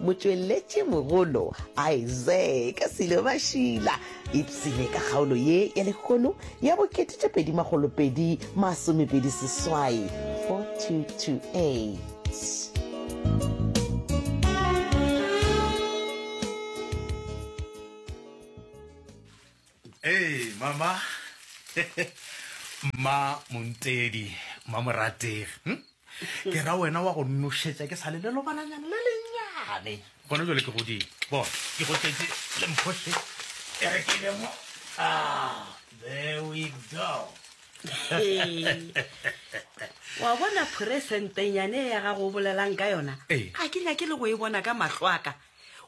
Motšweletšimogolo Isaac Silo Mashila ipsile ka kgaolo ye ya lekgono ya bo ketetša pedi makgolo pedi masomepedi seswai 4228. Ee, mama. Mma Montedi, mma Morategi. Hm? Ke ra wena wa go nošetša ke sa le lelobananyana le lenyane. Gona jale ke godile. Bona, ke go tletše le mphoše. E re ke le mo. Ah, there we go. wa bona phuresentenyane ya gago o bolelang ka yona a ke nyake le go e bona ka mahlo aka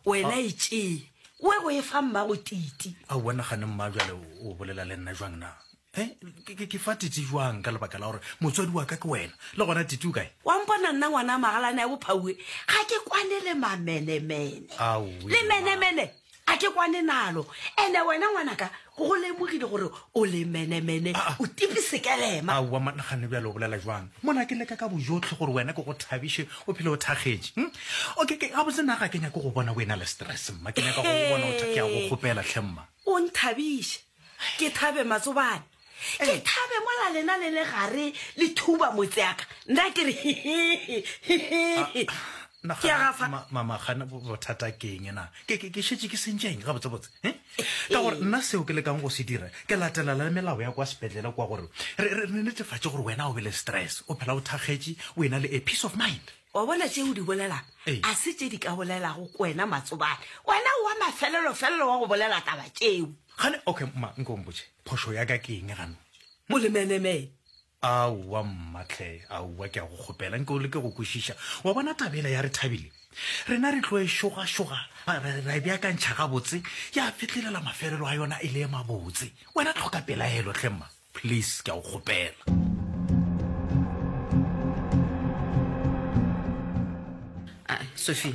wena e tšee o e go e fa mmago titi a o nagane mma jale o bolela le nna jwang na e ke fa titi jwang ka lebaka la gore motswadi wa ka ke wena le gona titi o kae wa mpona nna ngwana magalane ya bophaue ga ke kwane le mamenemene le menemene a ke kwane nalo ene wena ngwanaka Ke go lemogile gore o le menemene, Ah, ah. o tipe sekelema. Aowa monna gane bjale o bolela jwang mona ke leka ka bojotlhe gore wena ke go thabiše o phele o thakgetše hm? okay ke gabotse na ga ke nyake go bona o e na le stress mma ke nyaka go go bona o tha- ke a go kgopela tlhe mma o nthabiše ke thabe matsobane ke Ei. thabe mola lena le le gare le thuba motseaka nna ke re Nagana, ke a gafa ma- mama gane bo- bothata ke eng na ke ke- ke šetše ke sentšeng gabotsebotse eh? Ka gore nna seo ke lekang go se dira, ke latelela le melao ya kwa sepetlele kwa gore re, re, re netefatše gore wena o be le stress, o phela o thakgetše, o ena le a peace of mind. Wa bona tše o di bolelago, Ee. a se tše di ka bolelago ko wena Matsobane. Wena o wa mafelelo-felelo wa go bolela taba tšeo. Gane, okay, ma, nko o mpotše, phošo ya ka ke eng gano? Molemeneme, Aowa mma tlhe, aowa ke a go kgopela nke o leke go kwešiša. Wa bona taba ela ya re Thabile, rena re tlo e šogašoga, ra, ra, ra e beakantšha gabotse, ya fetlelela mafelelo a yona e le e mabotse. Wena tlhoka pelaelo tlhe mma, please, ke a go kgopela. Sophia,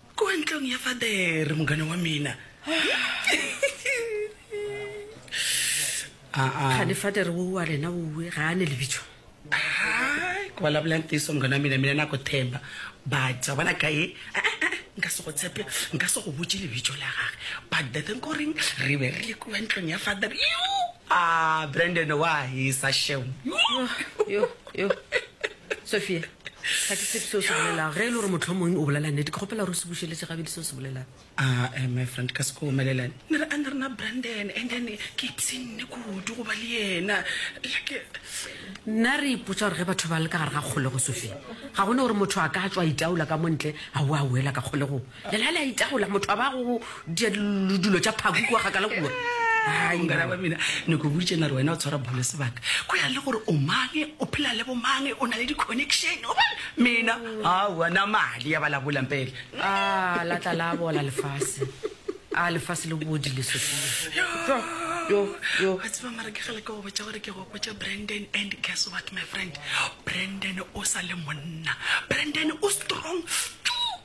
Kua ntlong ya father, mongane wa mina. Aa. Kgane father wo wa rena wo we ga ane lebitso. Hai, kua la bolang tiso mongane wa mina, mina na go themba. But, wa bona ka ye, eh, eh, eh, nka se go tshepe, nka se go botše lebitso la gage. But the thing koreng, re be re le kua ntlong ya father. Yoo! Aa, Brandon wa hisa shem. Yoo! Yoo, yoo, yoo. Sophia. ga ke tsebe seo se bolelago ge e le gore motlho mongwe o bolela nnete ke kgopela gore o se bušeletse gabedi seo se bolelago ah, eh, my friend ka seko omelela ne re a ne rena brandon and then ke ipsenne kudu goba le yena like nna re ipotsa gore ge batho ba le ka gare ga kgolego sofeng ga gone gore motho a ka tswa itaola ka montle a o a wela ka kgolegong Lela le a itagola, motho a ba go dia diludulo tša phaku kua kgakala kua. Hai, Mongala wa mina, ne ko boditše na re wena o tshwara bholo sebaka. Go ya le gore o mang, o phela le bo mang, o na le di-connection, o bona. Mina, aowa, na mali ya ba la bola mpela. A la tla la bola lefase. A lefase le bodile Sophia. Tlo, yo, yo. Wa tseba mara ke ge le ka go botša gore ke go botša Brandon and guess what my friend, Brandon o sa le monna. Brandon o strong.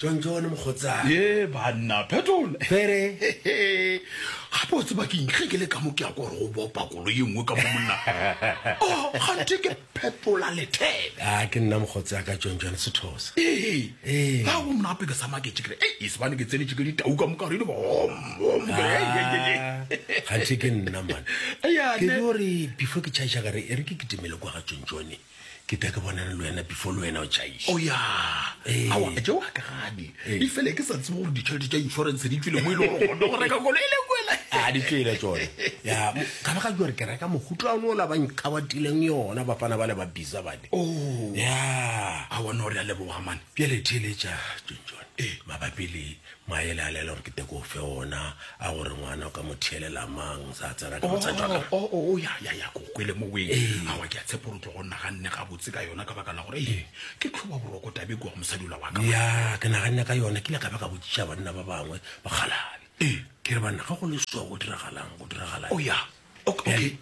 tsontsoone mokgotsana ye banna phetola pere gape o tseba ke ntle ke le ka mo ke ya kore go bopa kolo ye nngwe ka mo monna oh, gante ke phetola lethebe a ah, ke nna mokgotsi ya ka tsontsoone sethosa ee ka go mna apeke sa maketše kere ei e sebane ke tsenetše ke ditau ka moka redi gantšhe ke nna mane ke di gore before ke chaiša kare e re ke ketemele kwa ga tsontsone ke ka ke bonane le wena before le wena o chaiša oya awa je wa ka gane e fele ke sa tsebe gore ditšhelete tša insurance di tswile mo e le gore gone go reka kolo e le kwela a di tswile tsone ya ka ba ga jwa re ke reka mogutlo a no la ba nkabatileng yona bafana ba le ba bisa ba Oh. ya a bona gore a leboga mane bjale theletša john ee mabapi le maele a lela gore ke teko fe ona a gore ngwana o ka mo theelela mang sa tsena ka botsa jwaka o Oh, oh, oh, ya ya ya ko kwele mo weng Ee. awa ke a tshepo gore o tlo go naganne gabotse ka yona ka baka la gore ee ke tlhoba boroko tabe kua go mosadi ola wa ka ya ke naganne ka yona ke ile ka ba ka botsiša banna ba bangwe bakgalale Ee. ke re banna ga go le so go diragalang go diragala o ya okay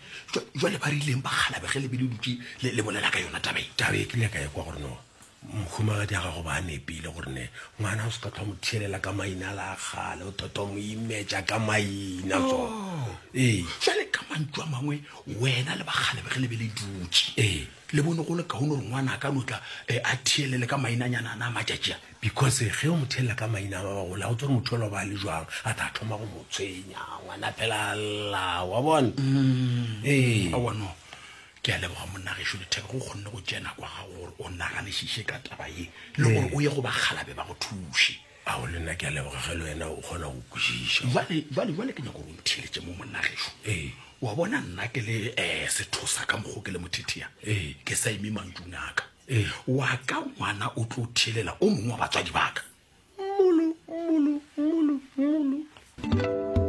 jwale ba rileng ba galabe ge lebele dutse le bolela ka yona tabe tabe ke nyaka e kwa gore no mokgomagadi a gago ba nepile gore ne ngwana o se ka tlhwa mo theelela ka maina la gale o thotho mo imetša ka maina so oh. ee jale ka mantso a mangwe wena le bagalabe ge lebele dutse ee le bone go le kaone gore ngwana a ka notla eh, a theelele ka mainanyana a na matšatšea Because ge o mo thelela ka maina a ba ba gola, go tsore motho yola o ba le jwang, a tla thoma go mo tshwenya, ngwana phela lla, wa bona? Mm. Ee. Awa no. Ke a leboga monna gešo lethebe go kgonne go tšea nako ya gago gore o naganišiše ka taba ye le gore o ye go bakgalabe ba go thuše ao le nna ke a leboga ge le wena o kgona go kwešiša jale jale jale ke nyako gore o ntheletše mo monnageso ee wa bona nna ke le um sethosa ka mokgo ke le mothethea ee ke sa eme mantšung aka Wa ka ngwana o tlo thelela o mongwe wa batswadi ba ka. Mmolo, mmolo, mmolo, mmolo.